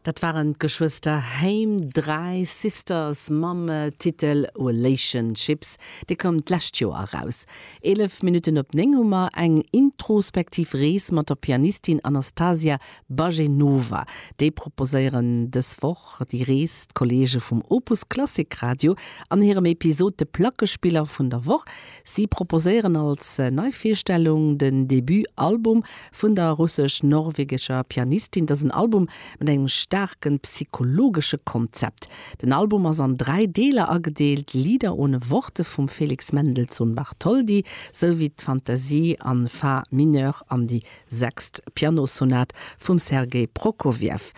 Dat waren d'Geschwëster Haim, Dry Sisters, mam Titel Relationships. Dee koum d'lescht Joer eraus. Eelef Minutten op néng hu mer eng introspektiv Rees mat der Pianistin Anastasia Bajenova. Déi proposéieren dës Woch déi Rees d'Kolleege vum Opus Klassik Radio an hirem Episod De Plackespiller vun der Woch. Si proposéieren als nei Virstellung den Debut Album vun der russesch-norwegescher Pianistin. Dat ass en Album mat engem staarken psychologesche Konzept. Den Album ass an dräi Deeler agedeelt, Lieder ohne Worte vum Felix Mendelssohn Bartholdy, sou wéi d'Fantasie an Fa mineur an déi Sechst Pianosonat vum Sergei Prokofjew.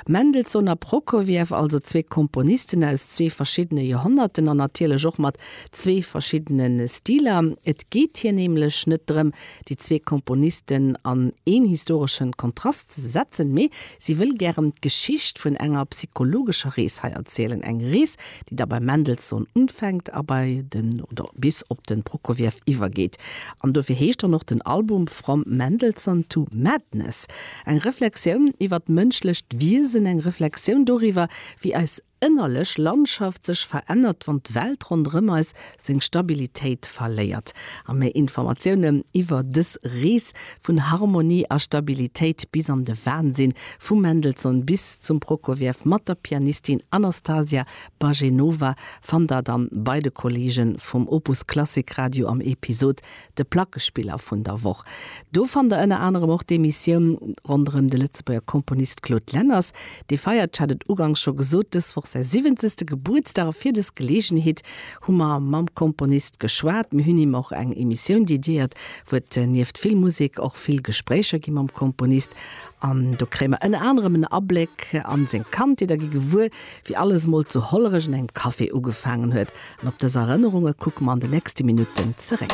Mendelssohn a Prokofjew, also zwee Komponisten aus zwee verschiddene Joerhonnerten an natierlech och mat zwee verschiddene Stiler. Et geet hir nämlech net drëm, déi zwee Komponisten an een historesche Kontrast ze setzen, mee si wëll gären d'Geschicht vun enger psychologescher Rees hei erzielen, eng Rees, déi da beim Mendelssohn unfänkt a bei den oder bis op den Prokofiev iwwergeet. An dofir heescht dann och den Album From Mendelssohn to Madness. Eng Reflexioun iwwer d'mënschlecht Wiesen, eng Reflexioun doriwwer, wéi eis ënnerlech Landschaft sech verännert, wann d'Welt ronderëm eis seng Stabilitéit verléiert a méi Informatiounen iwwer dës Rees vun Harmonie a Stabilitéit bis an de Wansinn, vum Mendelssohn bis zum Prokofiev mat der Pianistin Anastasia Bajenova, fannt der dann bei de Kollegen vum Opus Klassik Radio am Episod De Plackespiller vun der Woch, do fannt der ënner anerem och d'Emissioun ronderëm de Lëtzebuerger Komponist Claude Lenners. Dee feiert, ech hat et ugangs scho gesot, dës Woch säi siwwenzegste Gebuertsdag a fir dës Geleegenheet hu mer mam Komponist geschwat. Mir hunn him och eng Emissioun dediéiert, wou et nieft vill Musek och vill Gespréicher gi mam Komponist an do kréie mer ënner anerem en Abléck a seng Kandheet a gi gewuer, wéi alles mol zu Hollerech un engem Café ugefaangen huet. An op dës Erënnerunge kucke mer an de nächste Minutten zeréck.